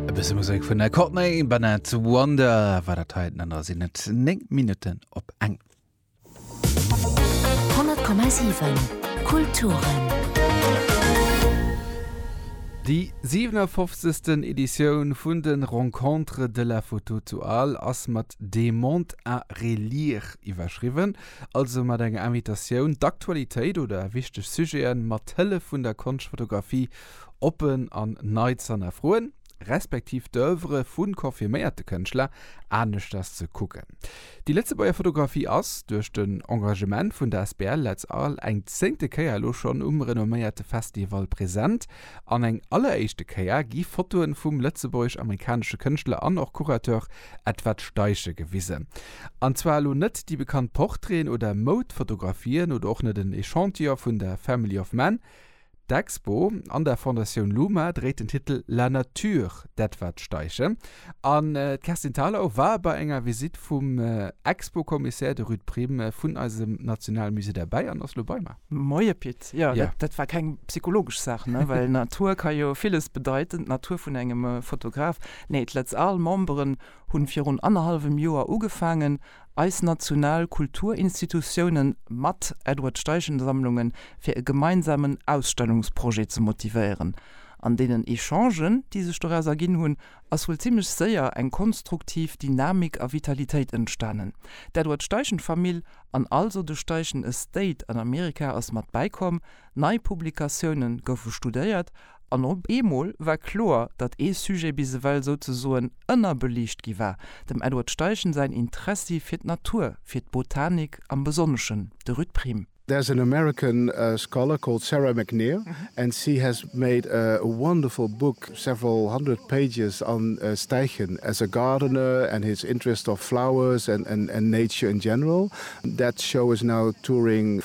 E bësse Musek vun der Courtney Barnett Wonder war dat heiten an der sinn net 9 Minutten op eng. 100,7 Kulturen. Déi 57. Editioun vun de Rencontres de la Photo zu Arles ass mat Des mondes à relire iwwerschriwwen, also mat enger Invitatioun, d'Aktualitéit oder wichteg Sujete mat Hëllef vun der Konschtfotografie oppen an nei z'hannerfroen, respektiv d'Oeuvrë vu confirméierte Kënschtler aneschters ze kucken. Déi Lëtzebuerger Fotografie ass, duerch den Engagement vun der Asbl Lëtz Arles, eng zéngte Kéier elo schonn um renomméierte Festival present. An eng alleréischte Kéier gi Fotoen vum lëtzebuergesch-amerikanesche Kënschtler an och Curateur Edward Steichen gewisen. An zwar elo net déi bekannt Portraiten oder Moudfotografien oder och net en Echantillon vun der Family of Man, D'Expo an der Fondatioun Luma dréit den Titel La nature d'Edward Steiche an d'Kerstin Thalau war bei enger Visitt vum Expo-Commissaire, de Ruud Prim, vun eisem National Musée derbäi an ass lo bei mer. Moie Pit, jo dat war keng psychologesch Saach ne, well Natur ka jo villes bedeiten, d'Natur vun engem Fotograf. Nee, d'Letz Al Memberen hunn virun annerhallwem Joer ugefaangen Eis national Kulturinstitutiounen mat Edward Steichen-Sammlungen fir e gemeinsamen Ausstellungsprojet ze motivéieren. An deenen Echangen, déi sech doraus erginn hunn, ass wuel zimmlech séier eng konstruktiv Dynamik a Vitalitéit entstanen. D'Edward Steichen-Famill an also de Steichen Estate an Amerika ass mat bäikomm, nei Publikatioune goufe studéiert An op eemol war kloer, datt ee Sujet bis ewell souzesoen ënnerbeliicht gi war, dem Edward Steichen säin Interessi fir d'Natur, fir d'Botanik am Besonneschen, de Ruud Priem. There's an American scholar called Sarah McNear and she has made a wonderful book, several hundred pages, on Steichen as a gardener and his interest of flowers and nature in general. That show is now touring.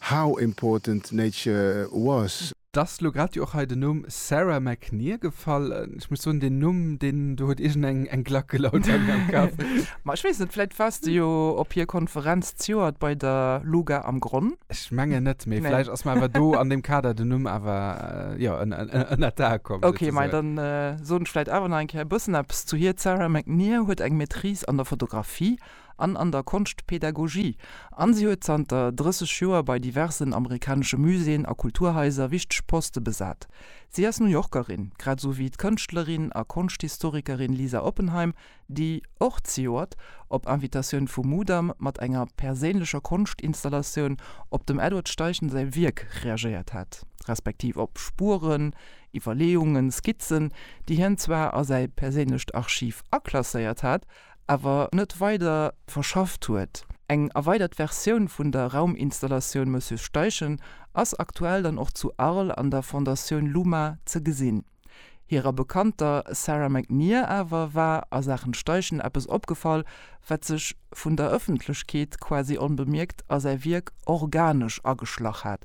How important nature was. D'ass lo grad jo och hei den Numm Sarah McNear gefall. Ech muss soen, deen Numm, deen do huet iergend eng Glack gelaut bei mir am Kapp. Ma ech weess net, vläit waars de jo op hir Konferenz zejoert bei der Luga am Gronn? Ech mengen net, mee vläicht ass mer awer do an deem Kader den Numm awer, jo, ënnert d'Ae komm. Ok, ma dann soen ech vläicht awer nach eng Kéier e bëssen eppes zu hir. D'Sarah McNear huet eng Maîtrise an der Fotografie an an der Konschtpädagogie an si huet zanter 30 Joer bei diversen amerikanesche Muséeën a Kulturhaiser wichteg Poste besat. Si ass New Yorkerin, grad esou wéi d'Kënschtlerin a Konschthistorikerin Lisa Oppenheim, déi, och zejoert op Invitatioun vum Mudam, mat enger perséinlecher Konschtinstallatioun op dem Edward Steichen säi Wierk reagéiert hat, respektiv op Spueren, Iwwerleeungen, Skizzen, déi hien zwar a säi perséinlecht Archiv aklasséiert hat, awer net weider verschafft huet. Eng erweidert Versioun vun der Rauminstallatioun Monsieur Steichen ass aktuell dann och zu Arles an der Fondatioun Luma ze gesinn. Hirer Bekannter Sarah McNear awer war a Saachen Steichen eppes opgefall, wat sech vun der Ëffentlechkeet quasi onbemierkt a säi Wierk organesch ageschlach hat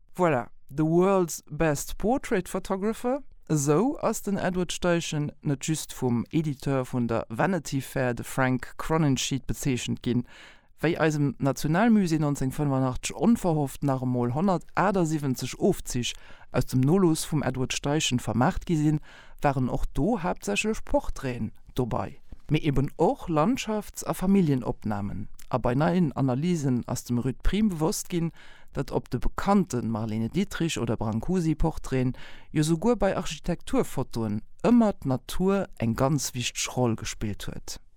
Voilà, the world's best portrait photographer, esou ass den Edward Steichen net just vum Editeur vun der Vanity Fair, de Frank Croninsheed, bezeechent ginn, wéi eisem Nationalmusée 1985 onverhofft nach emol 178 Ofzich aus dem Nolooss vum Edward Steichen vermaacht gi sinn, waren och do haaptsächlech Portraiten dobai, mee eben och Landschafts a Familljenopnahmen, a bei neien Analysen ass dem Ruud Priem bewosst gin, datt op de bekannten Marlene Dietrich oder Brancusi Portraiten, jo souguer bei Architekturfotoen, ëmmer d'Natur eng ganz wichteg Roll gespillt huet.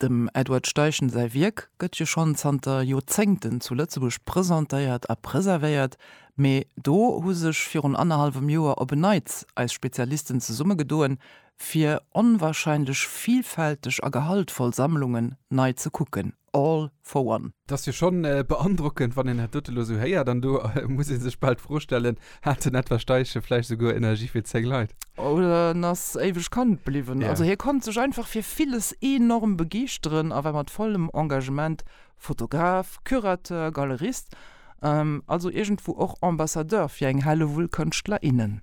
Dem Edward Steichen säi Wierk gëtt jo schonn zanter Joerzéngten zu Lëtzebuerg presentéiert a preservéiert, mee do hu sech virun annerhallwem Joer op en Neits eis Spezialisten zesummegedoen, fir onwahrscheinlech vielfälteg a gehaltvoll Sammlungen nei ze kucken. All. Fouern. Et ass jo schonn beandrockend, wann een dat dote lo esou héiert. An do muss ee sech bal d'Fro stellen, Hat den Edward Steichen vläicht esouguer Energie fir 10 Leit? Oder en ass éiweg Kand bliwwen. Also hie konnt sech einfach fir villes enorm begeeschteren a war mat vollem Engagement Fotograf, Curateur, Galerist, also iergendwou och Ambassadeur fir eng Hellewull Kënschtler, innen.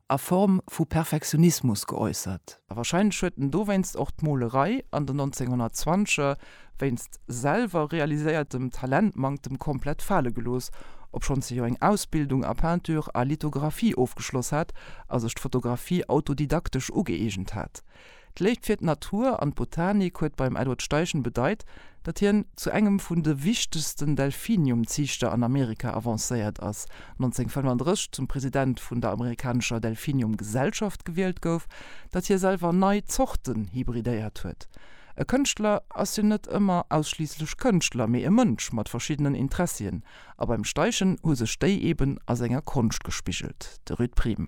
a Form vu Perfektionismus geäussert. A wahrscheinlech huet en dowéinst och d'Molerei an den 1920er wéinst selwer realiséiertem Talentmanktem komplett fale gelooss, obschonns hie jo eng Ausbildung a Peinture a Lithographie ofgeschloss hat a sech d'Fotografie autodidaktesch ugëeegent hat. D'Léift fir d'Natur an d'Botanik huet beim Edward Steichen bedeit, datt hien zu engem vun de wichtegsten Delphinium-Ziichter an Amerika avancéiert ass, 1935 zum President vun der amerikanescher Delphinium-Gesellschaft gewielt gouf, datt hie selwer nei Zorten hybridéiert huet. E Kënschtler ass jo net ëmmer ausschliisslech Kënschtler, mee e Mënsch mat verschiddenen Interessien. A beim Steichen hu sech déi eben a senger Konscht gespigelt, de Rued Prim.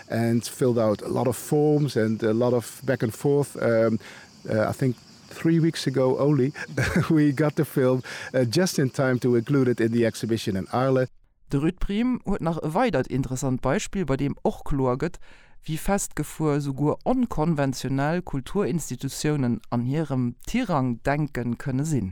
and filled out a lot of forms and a lot of back and forth I think three weeks ago only we got the film just in time to include it in the exhibition in Arles. De Ruud Priem huet nach e weidert interessant Beispill, bei deem och kloer gëtt, wéi festgefuer souguer onkonventionell Kulturinstitutiounen an hirem Tirang-Denke kënne sinn.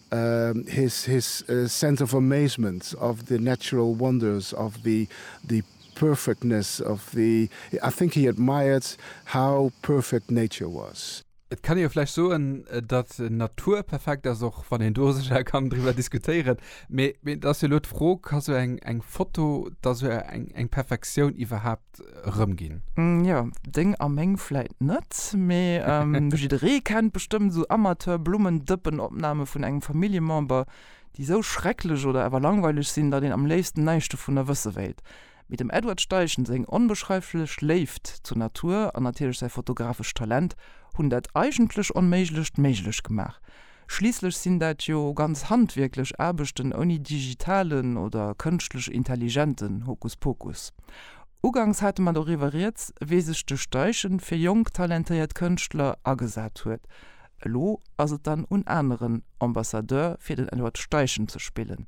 His his sense of amazement of the natural wonders of the the perfectness of the I think he admired how perfect nature was. Et kann ee jo vläicht soen, datt d'Natur perfekt ass, och wann een do sécher kann driwwer diskutéieren. Mee et ass jo elo d'Fro, Ka sou eng eng Foto da sou eng eng Perfektioun iwwerhaapt rëm ginn. Jo, deng a meng vläit net, mee jidderee kennt bestëmmt esou Amateur-Blummendëppen-Opname vun engem Familljemember, déi esou schrecklech oder awer langweileg sinn, datt een am léifsten näischt dovunner wësse wéilt. Mee dem Edward Steichen seng onbeschreiflech Léift zur Natur an natierlech säi fotografescht Talent hunn dat eigentlech Onméiglecht méiglech gemaach. Schliisslech sinn dat jo ganz handwierklech Aarbechten ouni digitalen oder kënschtlech intelligenten Hokuspokus. Ugangs hate mer doriwwer rieds, wéi sech de Steichen fir jonk talentéiert Kënschtler agesat huet. Elo ass et dann un aneren, Ambassadeur fir den Edward Steichen ze spillen.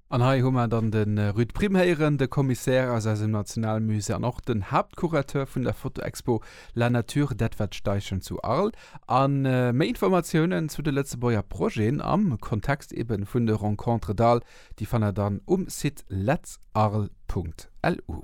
An hei hu mer dann de Ruud Prim héieren, de Commissaire aus eisem Nationalmusée an och den Haaptcurateur vun der Fotoexpo La nature d'Edward Steichen zu Arles a méi Informatiounen zu de Lëtzebuerger Projeten am Kontext eben vun de Rencontres d'Arles, déi fannt der dann um Site letzarles.lu.